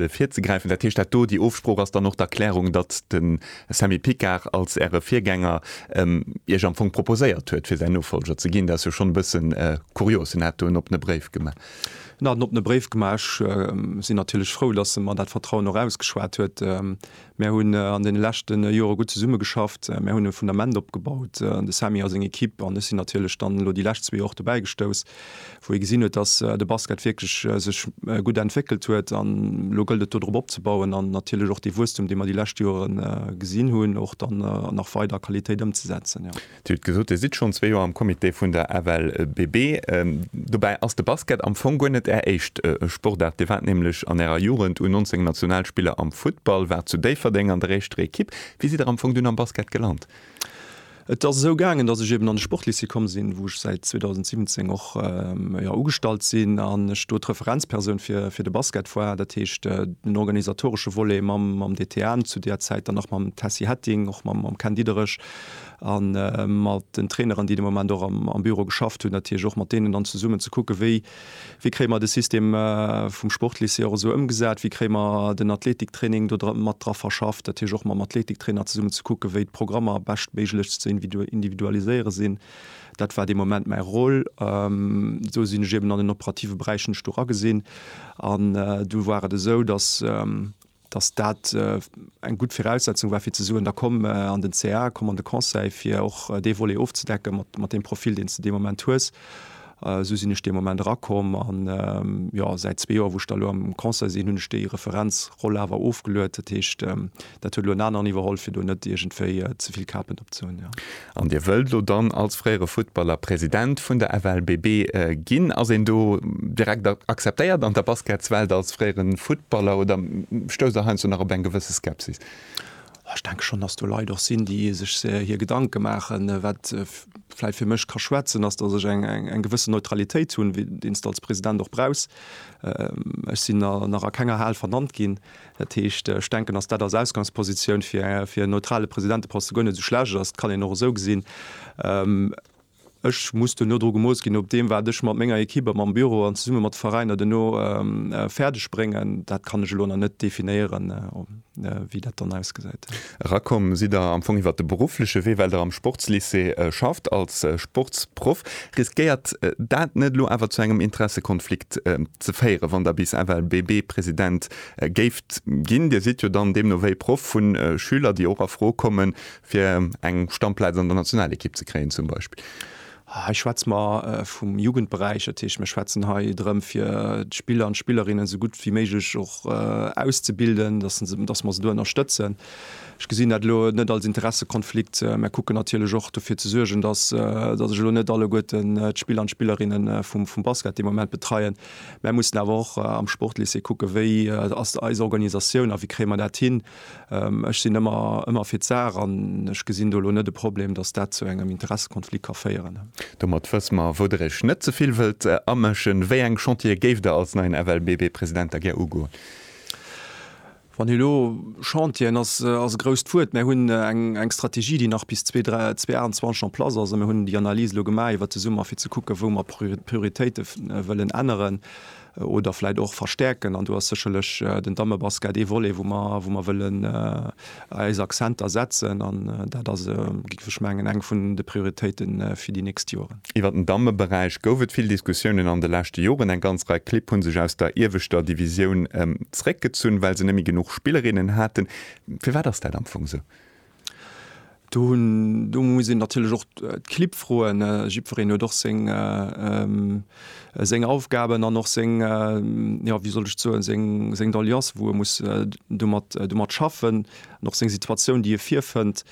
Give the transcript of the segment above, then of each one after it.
virzegräifen. Dat heescht, dat do, déi Ofsprooch ass dann och d'Erklärung, datt de Samy Picard als Äre Virgänger Iech am Fong proposéiert huet, fir säin Nofollger ze ginn. Dat ass jo schonn e bësse kurios. Hien hat do en oppene Bréif gemaach. Hien hat en oppene Bréif gemaach. Ech sinn natierlech frou, datt e mer dat Vertrauen och ausgeschwat huet. Mär hunn an deene leschte Jore gutt zesummegeschafft. Mär hunn e Fundament opgebaut, de Samy a seng Ekipp an ech sinn natierlech dann elo déi lescht zwee Joer och dobäi gestouss, wou ee gesinn huet, datt de Basket wierklech sech gutt entwéckelt huet. An elo gëllt et, do drop opzebauen an natierlech och dee Wuesstum, dee mer déi lescht Jore gesinn hunn, och dann nach weider a Qualitéit ëmzesetzen. Dir hutt gesot, Dir sidd schonn zwee Joer am Comité vun der FLBB. Dobäi ass de Basket am Fong guer net Är éischt Sportaart. Dir waart nämlech an Ärer Jugend U19-Nationalspiller am Futtball, waart zu Déifferdeng an der éischter Ekipp. Wéi sidd Der am Fong dunn am Basket gelant? Et ass esou gaangen, datt ech eben an de Sportlycée komm sinn, wou ech säit 2017 och, jo, ugestallt sinn an ech do d'Referenzpersoun fir de Basket war. Dat heescht, den organisatoresche Volet mam DTN zu deer Zäit, dann nach mam Tessy Hetting, och mam Ken Diederich, a mat den Traineren, déi de Moment och am Büro geschafft hunn, natierlech och mat deenen dann zesummen ze kucken, wéi kréie mer de System vum Sportlycée och esou ëmgesat, wéi kréie mer den Athletiktraining do mat dra verschafft, natierlech och mam Athletiktrainer zesummen ze kucken, wéi d'Programmer beschtméiglechst ze individualiséiere sinn. Dat war de Moment mäi Rôle. Do sinn ech eben an den operative Beräich, hunn ech do eragesinn an do war et esou, datt dass dat eng gutt Viraussetzung war fir ze soen, da komm an den CA, komm an de Conseil, fir och dee Volet ofzedecken mat, mat deem Profil, deen s de dee Moment hues. Esou sinn ech dee Moment erakomm an, jo, säit zwee Joer, wou ech da elo am Conseil sinn, hunn ech déi Referenzroll awer ofgeluet. Dat heescht, dat huet elo en aneren iwwerholl, fir do net iergendwéi ze vill Kapen op ze hunn, jo. An Dir wëllt elo dann als fréiere Futtballer President vun der FLBB ginn? Ass een do direkt akzeptéiert an der Basketswelt als fréiere Futtballer oder stousst Der heiansdo nach op eng gewësse Skepsis? Ech denke schonn, datt do Leit och sinn, déi sech hir Gedanke maachen. Wat vläicht fir mech ka schwätzen, ass, datt ech eng gewësse Neutralitéit hunn, deen s de als President och brauchs. Ech sinn nach a kenger Hal vernannt ginn, Dat heescht, ech denken, datt dat als Ausgangspositioun fir e neutrale Presidenteposte guer net esou schlecht ass. Dat kann een och esou gesinn. Ech muss duerno dru gemooss ginn, op deem, wat ech mat menger Ekipp a mam Büro an zesumme mat de Veräiner duerno fäerdeg bréngen. Dat kann ech elo nach net definéieren, wéi dat dann ausgesäit. Erakomm sidd Der am Fong iwwer de beruffleche Wee, well Der am Sportslycée schafft als Sportsproff. Riskéiert dat net elo awer zu engem Interessekonflikt ze féieren, wann Der bis ewell BB-President Géift ginn. Dir sidd jo dann deemno wéi Proff vu Schüler, déi och a Fro kommen, fir eng Stammplaz an der Nationalekipp ze kréien zum Beispill? Hei schwätze mer vum Jugendberäich. Dat heescht, mir schwätzen hei drëm, fir d'Spiller an d'Spillerinnen esou gutt wéi méiglech och auszebilden, dass se, dass mer se do ënnerstëtzen. Ech gesinn dat elo net als Interessekonflikt, mä kucken natierlech och dofir ze suergen, dass, dass ech elo net alleguerten d'Spiller an d'Spillerinnen vum, vum Basket dee Moment betreien. Mär mussen awer och am Sportlycée kucken, wéi ass eis Organisatioun a wéi kréie mer dat hin. Ech sinn ëmmer, ëmmer fir d'Saach an ech gesinn do elo net e Problem, datt dat zu engem Interessekonflikt ka féieren. Domat wësse mer, wou Der Iech net ze vill wëllt amëschen. Wéi eng Chantiere géift Der als neien FLBB-President da gär ugoen? Wann hie elo Chantieren ass, ass e grousst Wuert. Mir hunn eng Strategie, déi nach bis 2028 en place ass a mir hunn déi Analys elo gemaach iwwert de Summer, fir ze kucken, wou mer d'Prioritéite wëllen änneren oder vläicht och verstärken. An do ass sécherlech den Dammebasket ee Volet, wou mer wëllen eis Accenter setzen. An dat ass, géif ech mengen, eng vun de Prioritéite fir déi nächst Joren. Iwwer den Dammeberäich gouf et vill Diskussiounen an de leschte Joren. Eng ganz Rei Clibb hu sech aus der ieweschter Divisioun zeréckgezunn, well se net méi genuch Spillerinnen haten. Firwat ass dat am Fong esou? Do muss een natierlech och d'Clibb froen. Jiddwereen huet och seng Aufgaben an och seng, jo, wéi soll ech et soen, seng Doleancen, wou e muss domat schaffen, an och seng Situatioun, déi e virfënnt.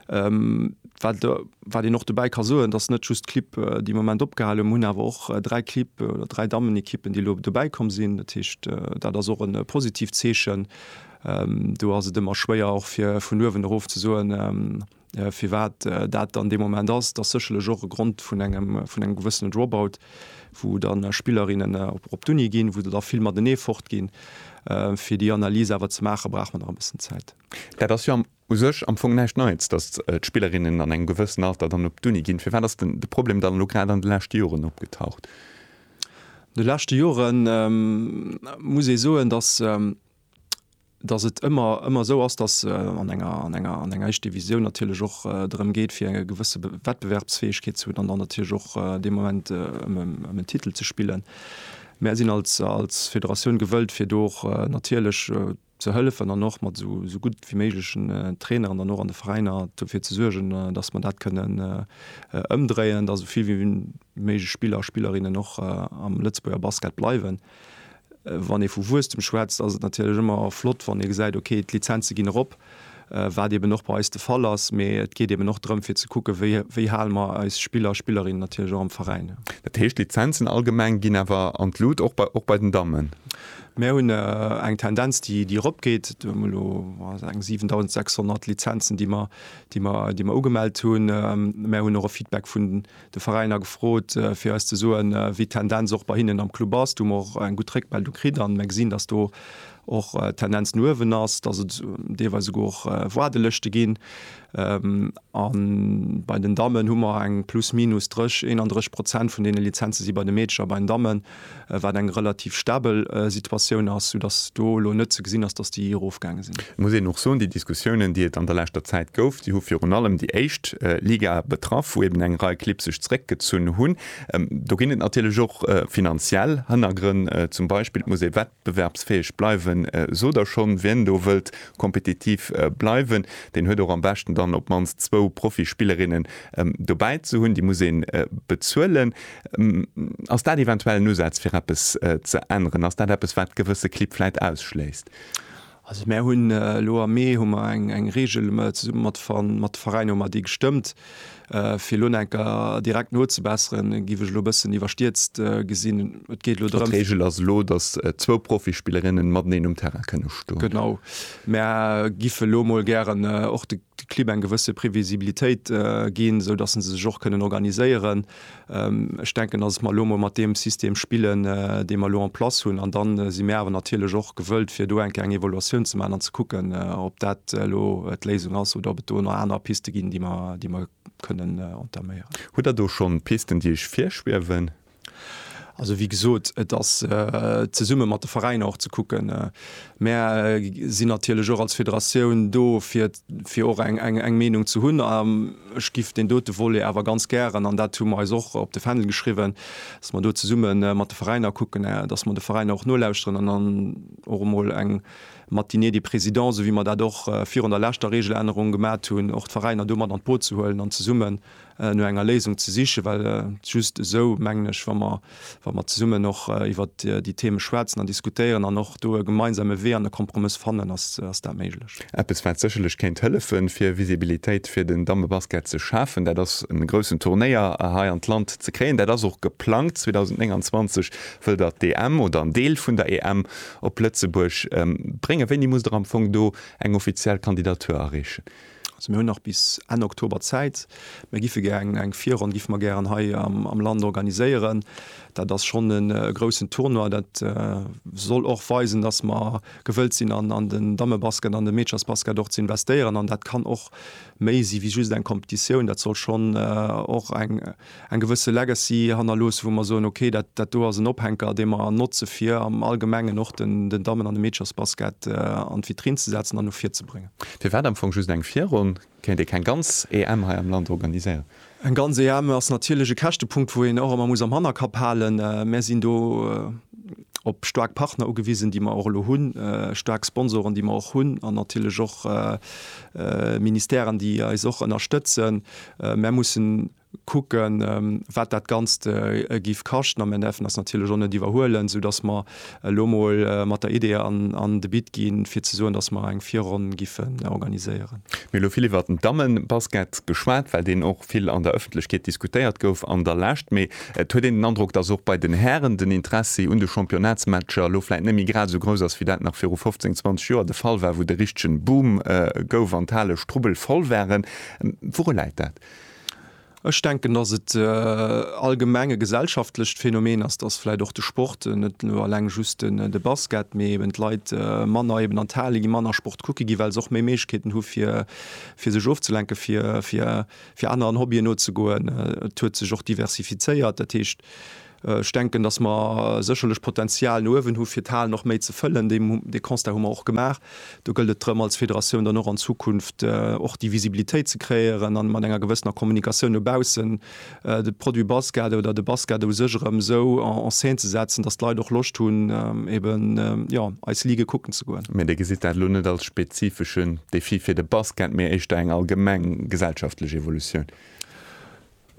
Wat wat een och dobäi ka soen, datt net just d'Clibb, déi am Moment opgehalen hunn, awer och dräi Clibb oder dräi Dammenekippen, déi elo dobäi komm sinn. Dat heescht, dat ass och e positivt Zeechen. Do ass et ëmmer schwéier och fir vun uewen erof ze soen, firwat dat dann dee Moment ass. Dat ass sécherlech och e Grond vun engem vun engem gewëssene Dropout, wou dann Spillerinnen op op d'Uni ginn, wou se da vill matenee fortginn. Fir déi Analys awer ze maachen, brauch mer nach e bëssen Zäit. Dat ass jo am U sech am Fong näischt Neits, datt d'Spillerinnen an engem gewëssen Alter dann op d'Uni ginn. Firwat ass de Problem dann elo grad an de leschte Joren opgetaucht? An de leschte Jore muss ee soen, datt et ëmmer esou ass, datt an enger an enger éischt Divisioun natierlech och drëm geet, fir eng gewësse Wettbewerbsfäegkeet ze hunn an dann natierlech och dee Moment ëm en Titel ze spillen. Mär sinn als Federatioun gewëllt, fir do och natierlech ze hëllefen an och mat esou gutt wéi méiglechen Traineren dann och an de Veräiner dofir ze suergen, dass mer dat kënnen ëmdréien, dass esou vill wéi méiglech Spiller a Spillerinnen och am Lëtzebuerger Basket bleiwen. Wann ee vu Wuesstem schwätzt, ass et natierlech ëmmer flott, wann ee gesäit, okay, d'Lizenze ginn erop. wat eben och bei eis de Fall ass, mee et geet eben och drëm fir ze kucken, wéi wéi hale mer eis Spiller a Spillerinnen natierlech och am Veräin. Dat heescht, d'Lizenzen allgemeng ginn awer an d'Lut, och bei och bei den Dammen? Mär hunn eng Tendenz déi déi eropgeet. Mir hunn elo, wa se eng 7.600 Lizenzen déi mer déi mer déi mer ugemellt hunn. Mär hunn och e Feedback vun de Veräiner gefrot fir eis ze soen, wéi d'Tendenz och bei hinnen am Club ass. Do hu mer och eng gutt Réckmeldung kritt a mer gesinn, datt do och d'Tendenz no uewen ass, datt et deelweis esouguer och Waardelëschte ginn. A bei den Dammen hu mer eng plus minus 30, 31 Prozent vun deene Lizenze si bei de Meedercher bei den Dammen. wat eng relativ stabel Situatioun ass, soudass do elo net ze gesinn ass, dass déi erofgaange sinn. Et muss een och soen, déi Diskussiounen, déi et an der leschter Zäit gouf, déi hu virun allem déi éischt Liga betraff, wou eben eng Rei Clibb sech zréckgezunn hunn. Do ginn et natierlech och finanziell Hënnergrënn, zum Beispill muss ee. Bewerbsfäeg bleiwen sot der schonn. Wien do wëllt kompetitiv bleiwen, deen huet och am beschten dann op d'mannst zwou Profispillerinnen dobäi ze hunn. Déi muss ee bezuelen. Ass dat eventuell en Usaz fir eppes ze änneren? Ass dat eppes wat gewësse Clibb vläit ausschléisst? Also mär hunn elo am Mee hu mer eng Reegel zesumme mat mat de Veräiner hu mer déi gestëmmt, fir elo enker direkt nozebesseren, géif ech elo e bëssen iwwerstierzt gesinn. Et geet elo drëm. D'Reegel ass elo, datt zwou Profispillerinnen mateneen um Terrain kënne stoen. Genau. Mär giff elo emol gären och de. de Clibb eng gewësse Previsibilitéit ginn, esou datt se sech och kënnen organiséieren. Ech denken, datt mer elo emol mat deem System spillen, dee mer elo en place hunn. An da si mär awer natierlech och gewëllt, fir do eng Kéier eng Evaluatioun ze maachen an ze kucken, ob dat elo d'Léisung ass oder ob et do nach aner Piste ginn, déi mer kënnen entaméieren. Hutt Der do schonn Pisten, déi Iech virschwiewen? Also wéi gesot, et ass zesumme mat de Veräiner och ze kucken. Mär sinn natierlech och als Federatioun do fir fir och eng Meenung ze hunn. A ech giff deen dote Volet awer ganz gären, an dat hu mer eis och op de Fändel geschriwwen, datt mer do zesumme mat de Veräiner kucken, datt mer de Veräiner och nolauschteren an dann och emol eng Matinée des présidents, esou wéi mer dat och virun der leschter Regelännerung gemat hunn, och d'Veräiner do mat an d'Boot ze huelen an zesummen, no enger Léisung ze sichen, well just esou, mengen ech, wa mer, wa mer zesummen och iwwer déi Theme schwätzen an diskutéieren an och do e gemeinsame Wee an e Kompromëss fannen, ass, ass dat méiglech. Eppes, wat sécherlech kéint hëllefen, fir Visibilitéit fir den Dammebasket ze schafen, dat ass, e groussen Turnéier hei an d'Land ze kréien. Dat ass och geplangt. 2029 wëll Der d'EM oder en Deel vun der EM op Lëtzebuerg bréngen. Wéini musst Der am Fong do eng offiziell Kandidatur areechen? Also mir hunn nach bis Enn Oktober Zäit. Mir gife gären eng Virronn gife mer gären hei am Land organiséieren. Dat ass schonn e groussen Tournoi. Dat soll och weisen, datt mer gewëllt sinn an den Dammebasket, an de Meederchersbasket och ze investéieren. An dat kann och méi si wéi just eng Competitioun. Dat soll schonn och eng. eng gewësse Legacy hannerloossen, wou mer soen, okay, dat, dat do ass en Ophänker, dee mer notze fir am Allgemengen och den, den Dammen an de Meederchersbasket an d'Vitrinn ze setzen an no vir ze bréngen. Firwat am Fong just eng Virronn? Kéint ee keng ganz EM hei am Land organiséieren? Eng ganz EM ass natierlech e Käschtepunkt, wou een och ëmmer muss am Hannerkapp halen. Mär sinn do op staark Partner ugewisen, déi mer och elo hunn, staark Sponsoren, déi mer och hunn, an natierlech och Ministèren, déi eis och ënnerstëtzen. Mär mussen kucken, wat dat Ganzt giff kaschten, a mär däerfen eis natierlech och net iwwerhuelen, esou dass mer elo emol mat der Idee an de Bit ginn, fir ze soen, dass mer eng Virronn giffen organiséieren. Mir hu elo vill iwwert den Dammebasket geschwat, well deen och vill an der Ëffentlechkeet diskutéiert gouf an der Lescht. Mee et huet een den Androck, dass och bei den Hären den Interessi un de Championnatsmatcher elo vläit net méi grad esou grouss ass, wéi dat nach viru 15, 20 Joer de Fall war, wou de richtegen Boom gouf an d'Hale strubbelvoll waren. Wourun läit dat? Ech denken, dass et allgemeng e gesellschaftlecht Phänomen ass, dass vläit och de Sport, net elo alleng just de Basket, mee eben d'Leit manner eben an d'Hale ginn, manner Sport kucke ginn, well se och méi Méiglechkeeten hu fir sech ofzelenken, fir aneren Hobbyen nozegoen. Et huet sech och diversifizéiert, dat heescht, Ech denken, dass mer sécherlech Potenzial no uewen hu fir d'Hal nach méi ze fëllen. Dee Constat hu mer och gemaach. Do gëllt et drëm als Federatioun dann och an Zukunft och déi Visibilitéit ze kreéieren a mat enger gewëssener Kommunikatioun no baussen de Produit Basket oder de Basket u sech erëm esou en scène ze setzen, dass d'Leit och Loscht hunn eben jo eis Ligue kucken ze goen. Mee Dir gesitt dat elo net als spezifeschen Defi fir de Basket, mee éischter eng allgemeng gesellschaftlech Evolutioun?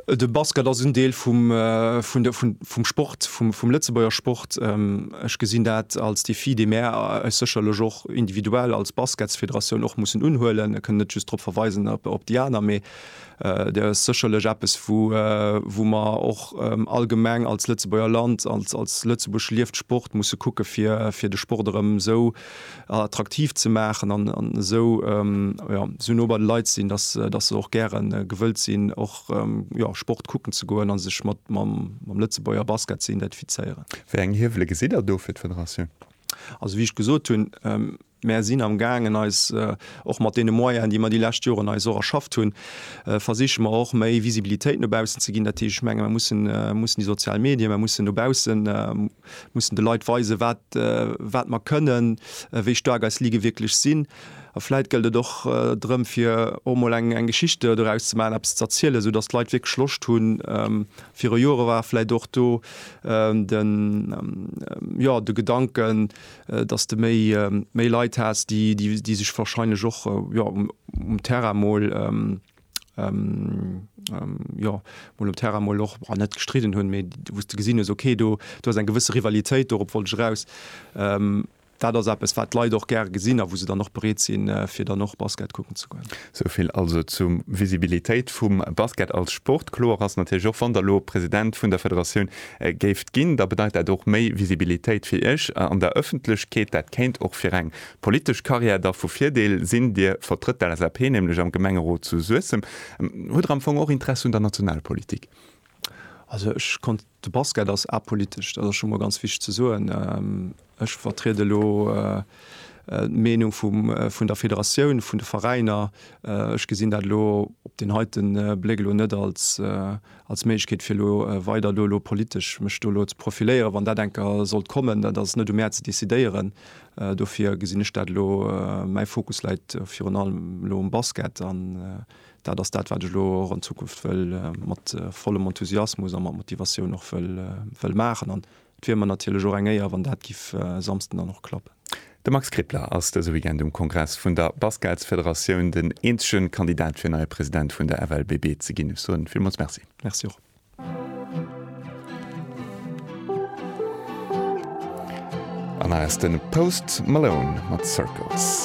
De Basket ass en Deel vum, vun der, vun, vum Sport, vum, vum Lëtzebuerger Sport. Ech gesinn dat als Défi, dee mär eis sécherlech och individuell als Basketsfederatioun och mussen unhuelen. Ech kënn net just drop verweisen, op, op déi aner, mee dat ass sécherlech eppes, wou, wou mer och allgemeng als Lëtzebuerger Land, als, als Lëtzebuerg lieft Sport, musse kucke fir, fir de Sport erëm esou, attraktiv ze maachen an esou esou no bei de Leit sinn, dass dass se och gäre gewëllt sinn och Sport kucken ze goen a sech mat mam mam Lëtzebuerger Basket ze identifizéieren. Wéi eng Hiewele gesitt Der do fir d'Federatioun? Also wéi ech gesot hunn, mär sinn am gaangen eis och mat deene Moyenen, déi mer déi lescht Joren eis och erschafft hunn, versiche mer och méi Visibilitéit no baussen ze ginn. Dat heescht, ech menge mer mussen mussen déi sozial Medien, mer mussen no baussen, mussen de Leit weisen, wat, wat mer kënnen, wéi staark eis Lige wierklech sinn. A vläit gëllt et och drëm, fir och emol eng, eng Geschichte doraus ze maachen, eppes ze erzielen, esou datt d'Leit wierklech Loscht hunn. Viru Jore war vläit och do de, jo, de Gedanken, datt s de méi, méi Leit has, déi, déi sech wahrscheinlech och, jo, um Terrain emol, jo mol um Terrain mol och an net gestridden hunn, mee wou s de gesinn hues, okay, do ass eng gewësse Rivalitéit, dorop wollt ech eraus. Dat ass eppes, wat d'Leit och gär gesinn a wou se dann och bereet sinn, fir dann och Basket kucken ze goen. Esou vill also zur Visibilitéit vum Basket als Sport. Kloer ass natierlech och, wann Der elo President vun der Federatioun géift ginn, da bedeit dat och méi Visibilitéit fir Iech an der Ëffentlechkeet. Dat kéint och fir eng Politesch Carrière da vu Virdeel sinn? Dir vertrëtt d'LSAP nämlech am Gemengerot zu Suessem. Hutt Der am Fong och Interesse un der Nationalpolitik? Also ech konnt, de Basket ass apolitesch, dat ass scho mol ganz wichteg ze soen. Ech vertrieden elo d'Meenung vun der Federatioun, vun de Veräiner. Ech gesinn dat elo op den heite Bléck elo net als als Méiglechkeet fir elo weider do elo politesch mech do elo ze profiléieren, wann dat eng Ke sollt kommen, dat ass net u mär ze décidéieren. Dofir gesinn ech dat elo, mäi Fokus läit virun allem elo um Basket an dat ass dat, wat ech elo och an Zukunft wëll mat vollem Enthusiasmus a mat Motivatioun och wëll wëll maachen an Et wier mer natierlech och eng Éier, wann dat giff e Samsden dann och klappen. De Max Krippler ass dëse Weekend um Kongress vun der Basketsfederatioun den eenzege Kandidat fir neie President vun der FLBB ze ginn. Ech soen villmools Merci. Merci och. An nach eis den Post Malone mat Circles.